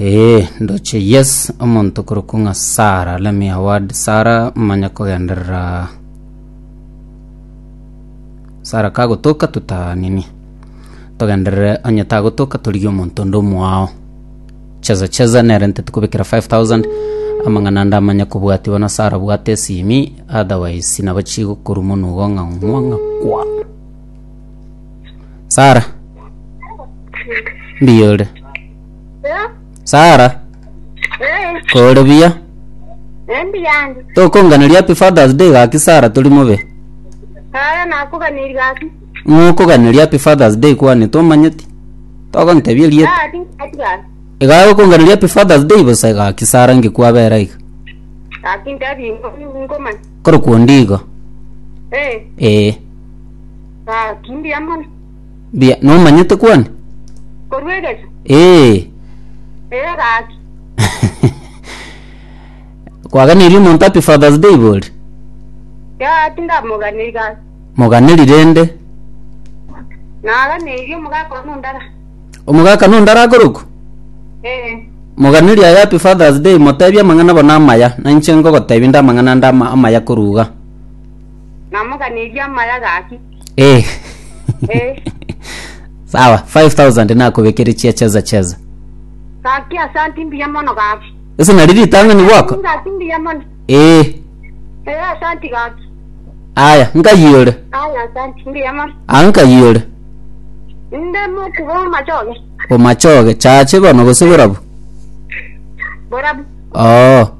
Ee, ndoche, yes, omonto okorokwa ng'a Sara, let me a word Sara, manya kogenderera Sara kagotoka tuta nini togenderere onye tagotoka torigie omonto onde omoao cheza cheza nere nte tikobekera 5000 amang'ana ande amanya kobwatiwa na Sara bwata esimi otherwise nabo chigokorumwa nugo ng'a ng'wa ng'a kwa Sara mbiya ore Eh, Sara, eh, kore buya. endi yandi. Tokonganeria happy Father's Day gaki Sara tori mobe. Aya nakuganiri gaki. Mokoganeria happy Father's Day kwane tomanyeti. Togontebia erieta. Gaki gaki gaki. Iga okonganeria happy Father's Day bosa gaki Sara ngekwabera iga. Gaki ndabi ngomani. Kore kuondi igo. Eh, Eh. gaki ndi amani. Mbuya, nomanyete kwani? Korwa egecho, Ee. ee gaki. Kwaganirie omonto happy Father's Day iga ori? Yaa, tindamoganeiri gaki. Moganeri rende. Naganeirie omogaka one ondara. Omogaka nonde arakorokwa? Ee. Moganeri aye happy Father's Day, motebie amang'ana bono amaya. Na inche ngogotebia inde amang'ana ande ama- amaya korwa iga. Namoganeirie amaya gaki. Eh. Eh. Sawa, 5000 nakobekere chia cheza cheza. Gaki asanti mbuya mono gaki. Ese nari ritang'ani gwako? Gaki mbuya mono. Eh. Eh, asanti gaki. Aya, nkayore. Aya, asanti mbuya mono. Ah, nkayore. Nde mutu bo machoge. Omachoge, chache bono gose borabu. Borabu. Oh.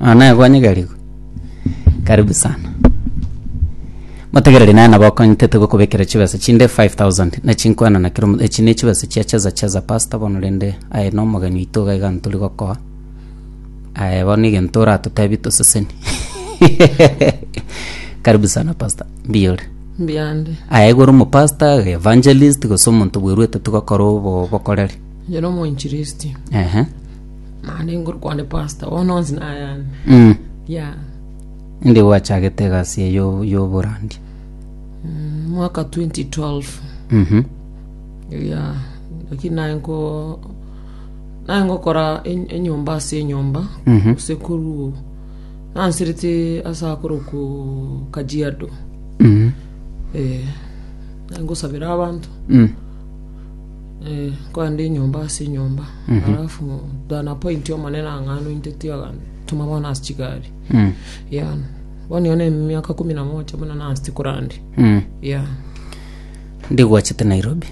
Nonya naye kwanyegerigwe? Karibu sana. Motegereri naye nabo akonyetete gokobekera chibesa chinde 5000 na chinkwana na kero omonto. Echi ne chibesa chia cheza cheza pastor bono rende aye na omogeni oito iga iga ntori gokoa. Aye bono egento oratotebi toseseni. Karibu sana pastor. Mbuya ore? Mbuya ande. Aye igoro mo pastor, evangelist gose omonto bweruete tigokora obo bokoreri. Inche nomoinchilisti Ehe. naende ngorokwa nde pastor bono onsi nayane Mm. ya Inde gwachagete egasi eye yo- y'oborandi. mm, mwaka 2012 Mhm. ya lakini naye nko naye ngokora en- enyomba ase enyomba Mhm. sekuru nansirete ase akoroku kajiado Mhm. eh, naye ngosabera abanto Mm. Eh, kwande enyomba ase enyomba alafu dana point omonene ang'ano inte tiaga tuma bono ase chigari Mm. ya bono yona emiaka kumi na moja buna nasi kurandi Mm. ya ndigwachete nairobi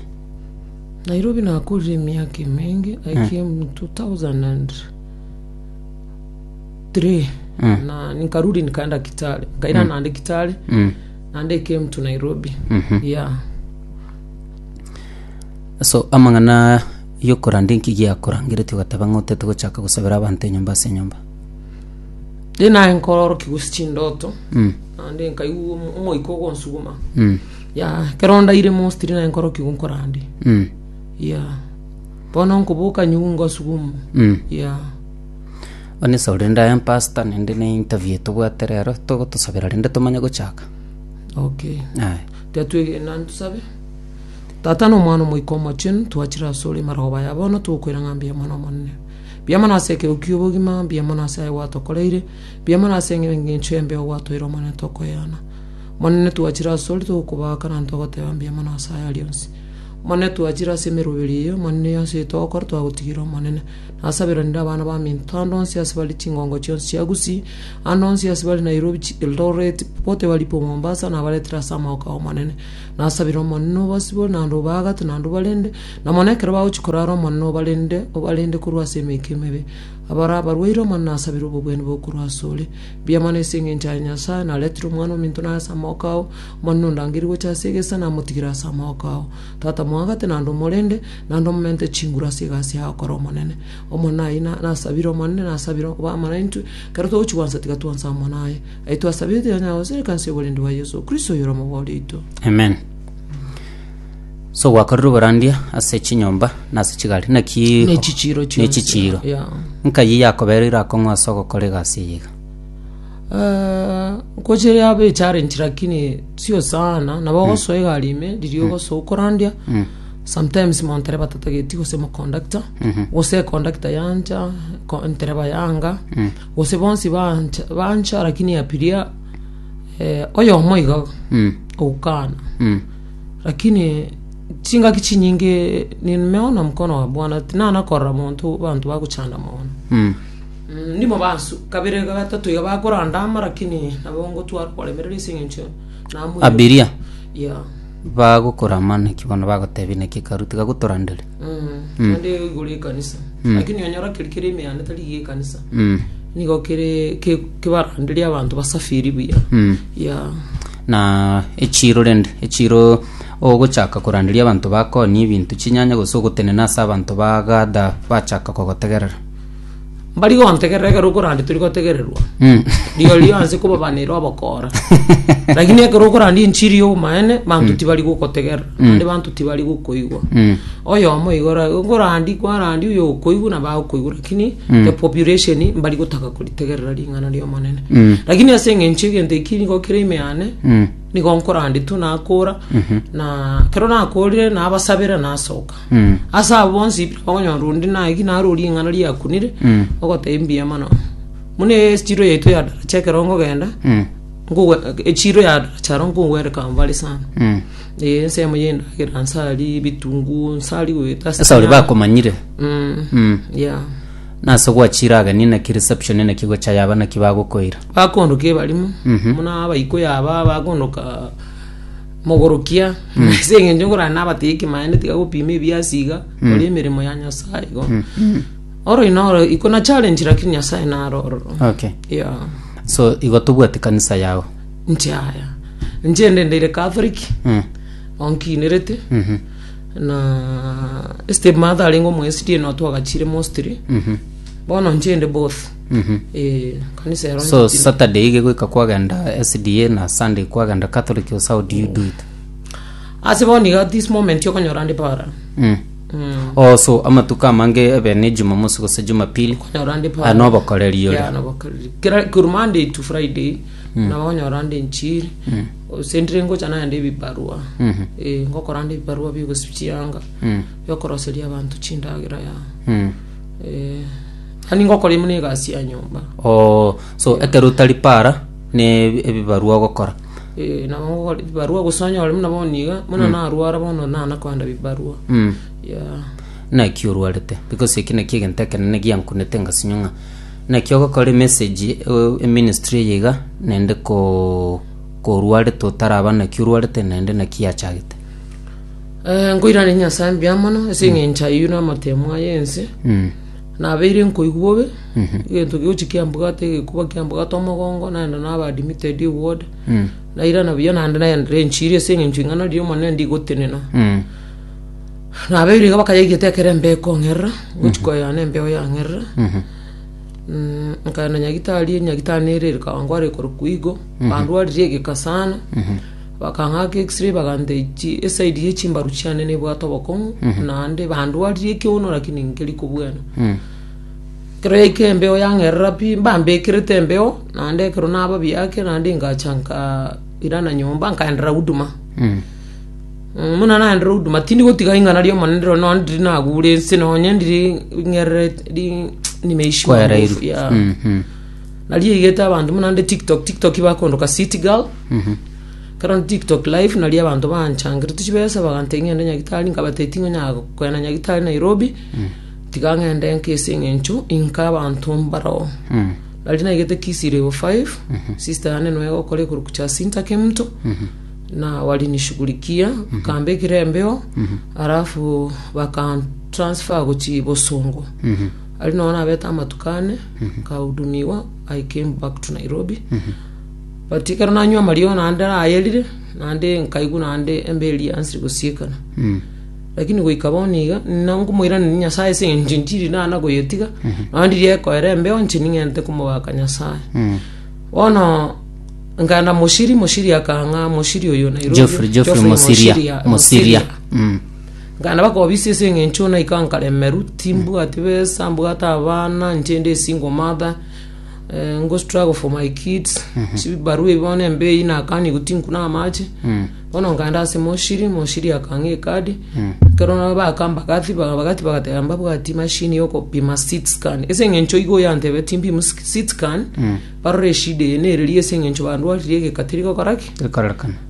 nairobi nakurire emiaka emenge i came 2003 Mm. na nikarudi nikaenda kitale nkaira nande kitale Mm. nande came to nairobi Mhm. ya Ase amang'ana yokoranda inki giakorangeretie ogateba ng'a otete gochaka gosabera abanto enyomba ase enyomba? Riria naye nkororokia gose chindoto, Mm. naende nkaigwa omo- omoika ogonsuguma, Mm. ya ekero ndaire mostly naye nkororokia igo nkorande, Mm. ya bono nkoboka nyigwe ngosuguma, Mm. ya One esao rende aye pastor naende ne interview tobwate rero, togotosabera rende tomanye gochaka. okay. Aye. Tiga twegena ntosabe. Tata na Omwana Omoika Omochenu, twachire asore amaroba aya bono, togokwera ng'a mbuya mono Omonene. Mbuya mono ase ekero ki'obogima, mbuya mono ase aye gwatokoreire, mbuya mono ase engencho embe ogwatoire Omonene tokoeana. Omonene twachire asore togokobaaka na togoteba mbuya mono ase aya rionsi. Omonene twachire ase emeroberi eye, Omonene ase eye togokora twagotigera Omonene. Nasaberanire abana baminto ande onsi ase bare chingongo chionsi chia Gusii, ande onsi ase bare Nairobi, Eldoret, popote bari po Mombasa, nabaretere ase amaoka 'Omonene. Nasabire Omonene obosibore naende obaagato naende obarende, na mono ekero bagochia korara Omonene obarende, obarende korwa ase emeika emebe. Abare abarwaire Omonene nasabire obobwene bobe korwa asore. Mbuya mono ase engencho yaye Nyasae, naretire Omwana ominto naye ase amaboko ao, Omonene ondangerie gocha ase egesa, namotigire ase amaboko ao. Tata moagete naende omorende, naende omomente chinguru ase egasi yaye okore omonene. Omonene aye nasabire Omonene, nasabire obe amo naintwe, ekero togochia gwansa tiga twansa amo naye. Aye twasabire oteba naye ase ekansa y'oborendi bwa Yeso Kristo oyore omobori oito. Amen. So gwakorire oborandia ase chinyomba na ase chigari naki Ne chichiro ne chionsi. chichiro Yeah. nkayi yakobereire akong'u ase ogokora egasi eye iga Eh, nkoche yaba echallenge lakini sio sana nabo ogosoa egari ime riria ogosoa okorandia sometimes montereba tatageti gose moconductor gose econductor yancha ko- ntereba yanga Gose bonsi bancha, bancha lakini yapiria eh, oyomo iga Mm. ogokana Mm. lakini chingaki chinyinge nimeona mkono wa bwana tinana korora monto bantu bagochanda mono Mm. Mm, ndimo bansu kabere gatatu iga bakorandama lakini nabo ngotwara koremerera ase eng'encho namoire abiria ya bagokorama naki bono bagotebia naki karu tiga gotoranderi Mm, naende igoro ekanisa lakini onyora keri kere emeyanda tari iga ekanisa Mm. nigo kere ke- kebaranderia abanto basafiri buya Mm. ya na echiro rende echiro ogochaka koranderia abanto bakonia ebinto chinyanya gose ogotenena ase abanto bagather bachaka kogotegerera Mbari gontegerera ekero okorandia tori gotegererwa. Mm. Rigo rionsi kobabanera obokora. Lakini ekero okorandia enchiri y'obomaene, banto tibari gokotegerera, ande banto tibari gokoigwa. Mm. Oyomo igora okorandia kwarandia oyo okoigwa na bagokoigwa lakini the population mbari gotaka koritegerera ring'ana ri'Omonene. Mm. Lakini ase eng'encho egento eki nigo kere ime yane, Mm. nigo nkorandia tu nakora na ekero nakorire nabasabera nasoka. Mm. ase abo bonsi pi okonyora onde naye ki naro ring'ana riakunire Mm. ogoteba mbuya mono muna echiro yaito ya daracha ekero nkogenda Mm. nkogo- echiro ya daracha aro nkogwereka mbare sana Mm. Eh, ensemo yendagera nsari bitungu nsari goeta ase ase ori nyama. bakomanyire Mm, Mm. yeah. nase gwachire ageni naki reception naki gocha yaba naki bagokoira bakondoka ebarimo Mhm. muna abaiko yaba bakondoka Mogorokia, na ase eng'encho nkorana nabatebia ekemaene, tiga gopima ebiasi iga, kora emeremo ya Nyasae igo. Orori noro, iko na challenge lakini Nyasae naro ororo. Okay. Yeah. So igo tobwate kanisa yao. Nche aya. Nche ndendeire Catholic, Mm. onkinerete, Mhm. na stepmother arenge omoyesidi eno twagachire mostly. Mhm. Bono nche inde both. Eh, kanisa ero so nchikire. saturday ige goika kwagenda sda na sunday kwagenda catholic ose how do you do it ase bono iga this moment okonyora ndi para mm. Mm, oh, so amatuko amange ebe ne jumamosi gose jumapili okonyora ndi para Ah, nobokoreri ore. Yeah, nobokoreri. Kera- kuru monday to friday nabo okonyora ndi nchiri ase ndire ngocha naende ebibarua Mhm. Eh, ngokora ndi ebibarua bigosichianga Mm. biokoroseria abanto chindagera ya Mm. Eh, Ani ngokora ime negasi ya nyomba. Oo, so ekero otari para ne ebibarua ogokora. Eh, nabo ngokora ebibarua gose onye ore buna bono iga, buna narwara bono nana koenda bibarua. Mm. Yeah. naki orwarete because eki naki egento ekenene giankunete ngasinywa ng'a naki ogokora emessage eh, eministry eye iga naende ko korwarete otaraba naki orwarete naende naki yachagete Eh, nkoirane Nyasae mbuya mono ase eng'encho ayio na amatemo aye ense. mm. Nabeire nkoigwa bobe, egento giochi kiambugate egekuba kiambugate omogongo, naenda naba admitted eward. Nairana buya naende naendire enchiri ase eng'encho ing'ana riria omonene ndigotenena. Nabeire iga bakayaigete ekero embeo ekong'erera, gochi koyana embeo yang'erera. Mm, nkaenda nyagitari, nyagitari nere ere Kawangware korokwa igo, bandwaririe egeka sana. Bakang'aka X-ray bagantechi eside ye chimbaru chiane nebwate obokong'u naende bandwarire ekiono lakini nkeri kobwena ekero yaika embeo yang'erera pi mbambekerete embeo naende ekero nababi ake naende ngacha nkairana nyomba nkaenderera huduma Mm, buna naenderera huduma tindi gotiga ing'ana ri'omonene rirorio nonya ndiri nagure ense nonya ndiri ng'erere ri- nimeishiwa Kwaereirwe. nguvu, yeah. Mm, mm. Nariegete abanto buna nde tiktok tiktok bakondoka city girl kero nde tiktok live nari abanto banchangerete chibesa bagantebia ng'ende nyagitari nkabatebia tingonyara kogenda nyagitari nairobi tiga ng'ende nka ase eng'encho inka abanto mbaroo nari naigete kisi level 5 sister yane nigo egokora egorup cha sinta kemto na walinishughulikia bakambekera embeo alafu bakantransfer gochia bosongo Aria nonya nabete amatuko ane nkahudumigwa I came back to Nairobi but ekero nanywa amariogo naende nayerire naende nkaigwa naende embe eria ansiri gosiekana lakini goika bono iga nina nkomoiraneria Nyasae ase eng'encho intiri nana goyetiga nonya ndiria ekoera embe yonsi ning'ente komogaka Nyasae bono nkaenda Mosiri Mosiri akang'a Mosiri oyo Nairobi Geoffrey- Geoffrey Mosiria. Mosiria. Mm. Nkagenda bakobisia ase eng'encho naika nkaremeru, timbwati besa, mbwate abana, nchende a single mother, eh, ngo struggle for my kids, chibarua ebi bono embe eyi nakanigu tinkuna amache. Bono nkaenda ase moshiri, moshiri akang'a ekadi, ekero nabo baka mbagathi, ba- bagathi bagateba mbabwati machine yokopima seed scan. Ase eng'encho igo yantebia timpimi sk- seed scan, barore eshida eye neriria ase eng'encho bandwarire egeka teri gokora ki? Ekorekana.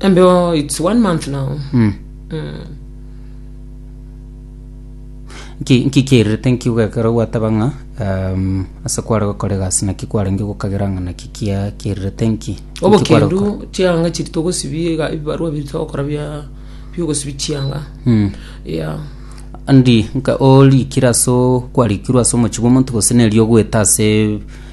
And oh, it's one month now. Mm. Nki- nki kierete nki ugekera gwateba ng'a um, ase kware gokora egasi naki kwarenge gokagera ng'a naki kia kierete nki Nki kware gokora? Obokendu chianga chiri togosibia ega- ebibarua biri togokora bia biogosibi chianga. Mm. Yeah. andi nka orikire ase o- kwarikirwe ase omochibi omonto gose neri ogwete ase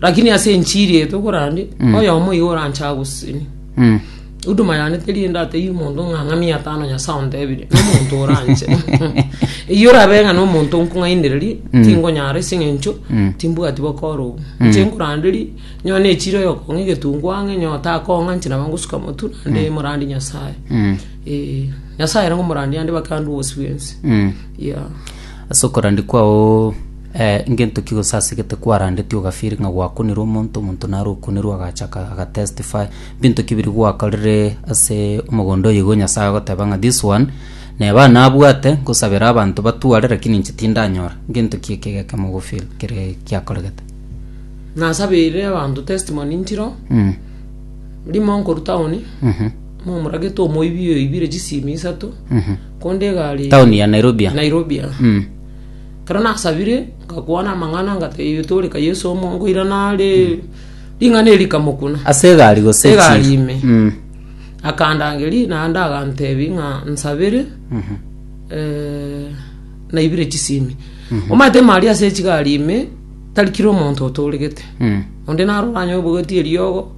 Lakini ase enchiri eye tokorande, oyomo igo oranche agosesenie. Mm. Huduma yane teri ende atebie omonto ng'a ng'a mia tano Nyasae ontebire, nomonto oranche. Eyio orabe ng'a nomonto onkong'ainereria, tingonyara ase eng'encho timbwati bokoro obo. Inche nkoranderia, nyo nechire oyokong'a egetungu ang'e, nyo takong'a inche naba ngosuka motu, naende morandi Nyasae. Mm. Eh, Nyasaye ere ngomorandi ande bake ande obosibwensi. Mm. Yeah. Ase okorandia kwao ngento ki gose ase gete kwarandeti ogafeel ng'a gwakonirwe omonto, omonto nare okonerwa agacha agatestify, binto ki biria gwakorire ase omogondo oyo igo Nyasae agoteba ng'a this one neba aa nabwate ngosabera abanto batware lakini inche tindanyora, ngento ki ekio egekemo ogofeel kere giakoregete? Nasabeire abanto testimony nchiro, rimo nkorwa town momoragete omoibi oibire chisimi isato. Konde iga aria Town ya Nairobi. ah. Nairobi ah. Mm. Ekero nasabire ngakwana amang'ana ngatebia toreka Yesu omo nkoirana are ring'ana eri kamokuna Ase egari gose chi- egari ime Mm. akandangeria naende agantebi ng'a nsabere Mhm. eh, naibire chisimi omanyete mari ase echigari ime tari kira omonto otoregete Mm. onde narora anye obogeti eriogo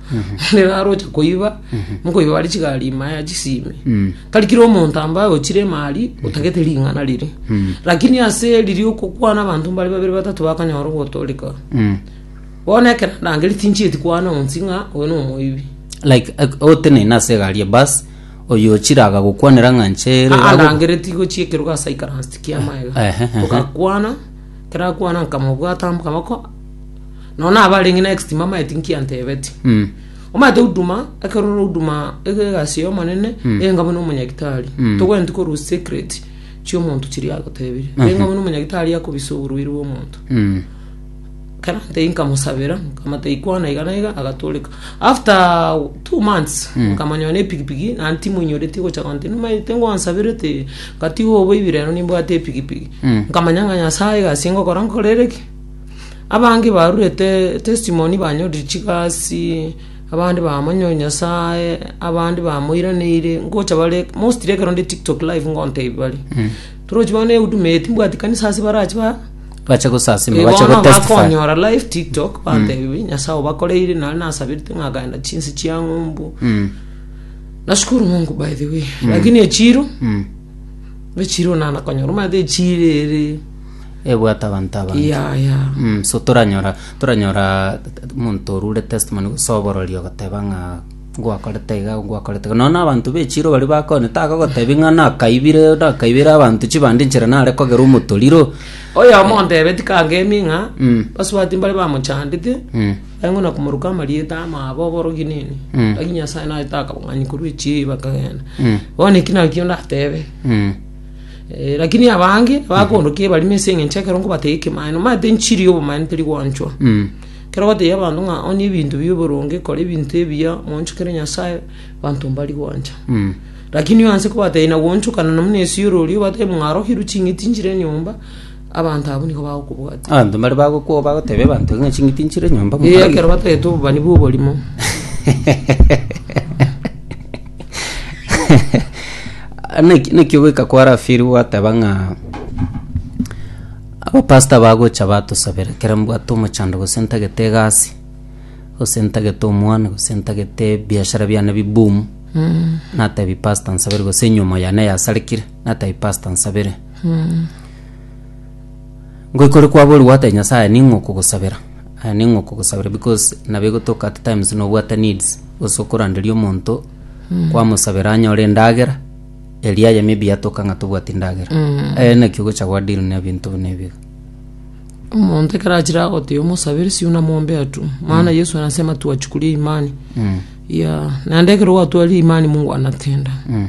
onde narocha koiba mokoiba bare chigari ime aya chisimi Mm. Tari kera omonto ambaye ochire emari otagete ring'ana rire. Lakini ase riri okokwana abanto mbare babere batato bakanyora ogotooreka. Mm. Bono ekero ndangeri tinchieti kwana onsi ng'a oyo nomoibi. like ak- oteneine ase egari ya bus oyo ochire agagokwanera ng'a nchere Aa, ndangere tigochia ekerogo ase aikaransti kia maega. Ehe, ehe. Togakwana, kera akwana nkamobwata amaboko. Nonya nabo arenge next mamae tinkiantebeti. Mm. Omanyete huduma, ekero ore huduma ege egasi y'Omonene, renga buna omonyagitari. Togwenereti korwa secret chi'omonto chiria agotebirie. Renga buna omonyagitari akobisa oborwaire bw'omonto. Mm. Kera ntei nkamusabera, nkamata ikwana iga na iga, agatoreka. After two months, nkamanyora na epigipigi, naende timoinyoretie gocha gonte, nomanyete ngwansabirete, ngatiga oboibi rero nimbwate epigipigi. Nkamanya ng'a Nyasae egasi ngokora nkorere ki? Abange barurete testimony banyoririe chigasi, abande bamonyoire Nyasaye, abande bamoiraneire, ngocha bare mostly ekero ndi TikTok live ngontebia bare. Torochi bono ehuduma eye timbwati kanisa ase barache ba bache gosasima Eh, bache bono gotestify bakonyora live tiktok bantebirie nyasaye obakoreire nare nasabete ng'akagenda chinse chia ng'umbu Mm, nashukuru mungu by the way lakini echiro mm. echiro nana konyora omanyete echiro ere ebwate abanto abange ya ya Mm, so toranyora toranyora omonto orure testimony gose oborori ogoteba ng'a ngwakorete iga ngwakorete iga nonya abanto bechiro baria bakone tagogotebi ng'a nakaibire nakaibire abanto chibande nchera nare kogera omotoriro oyomo ontebe tikangemi ng'a Mm. basubati mbare bamochandete Mm. engo na komoruka amarieta amabo oborogi nini Mm. lakini nyasaye naye takabong'anyi korwa echibi bakagenda Mm. bono eki nakio ndatebe Mm. Eh, Lakini abange bakoondokia ebarimo ase eng'encho ekero nkobatega ekemaene nomanyete enchiri y'obomaene teri gwanchwa Mm. kero bategia abanto ng'a onie ebinto bia oboronge kora ebinto ebiya mwanchokere nyasae banto mbari gwancha Mm. lakini oanse kobatebia na gwanchokana na muna esio orori obatebia ng'a arokirwe ching'iti nchire nyomba Abanto abwo nigo bagokobwatia. Abanto mbare bagokwa bagotebia abanto ng'a ching'iti nchire nyomba Ee, mokorage. ekero batagete obobani bw'oborimo. Naki- naki ogoika kwa rafiri gwateba ng'a abapasta bagocha batosabera ekero mbwate omochando gose ntagete egasi gose ntagete omwana gose ntagete ebiashara biane bi boom natebi pasta nsabere gose enyomo yane yasarekire natebi pasta nsabere Ngoikore kwaborwa gwate Nyasaye ning'o kogosabera. Aya ning'o kogosabera because nabo egotoka at times nobwate needs gose okoranderia omonto kwamosabera anyore endagera eria aye maybe yatoka ng'a tobwati ndagera. Aya naki ogocha gwa deal na ebinto buna ebi iga. omonto ekero achire agoteba omosabere siuna mombe atwo maana yesu anasema tuwachukulie imani Mm. ya naende ekero gwatwaria imani mungu anatenda Mm.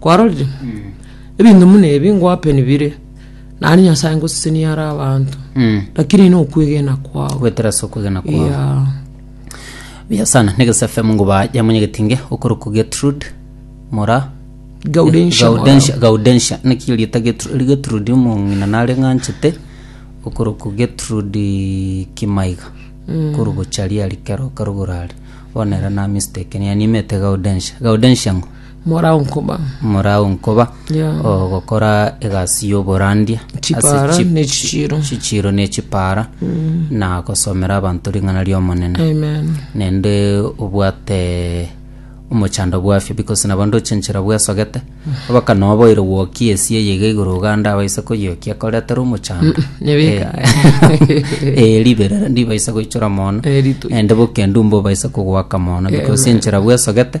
Kwarorire? Ebinto buna ebi ngoapeni bire, naende Nyasae ngosesenia are abanto, Mm. lakini ine okwegena kwao. gwetera ase okwegena kwao Yeah. buya sana negesa fm ngoba ya monyegetinge okorokwa getrude mora Gaudentia gaudensia Morava. gaudensia naki erieta Getru- getrude omong'ina nare ng'anchete okorokwa getrude kimaiga korugocharia ari kero karogoro are bono ere na mistake niye nimete gaudensia gaudensia ng'o Morao nkoba. Morao nkoba. Yeah. O, gokora egasi y'oborandia. ase Chipara chip- ne chichiro. chichiro ne chipara na gosomera abanto ring'ana ri'omonene Amen. nende obwate omochando bwafio because nabo ndochenchera bwesogete abaka noboire gwokia esia eye iga igoro oganda abaise koyiokia koretere omochando Nyebeka. Eh, riberera ndibaisa goichora mono Eh, rito. ende bokendu mbobaisa kogwaka mono because enchera bwesogete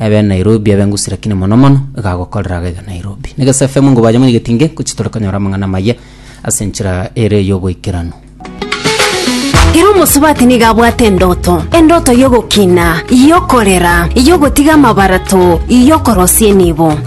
Ebe Nairobi ebe ngusi lakini mono mono igagokorera gaiga Nairobi. Negesa FM ngo baje monyegeti nge kuchi tore konyora amang'ana amaye ase enchera ere y'oboikeranu. Ere omosubati nigo abwate endoto, endoto y'ogokina, y'okorera, y'ogotiga amabarato, y'okorosia enibo.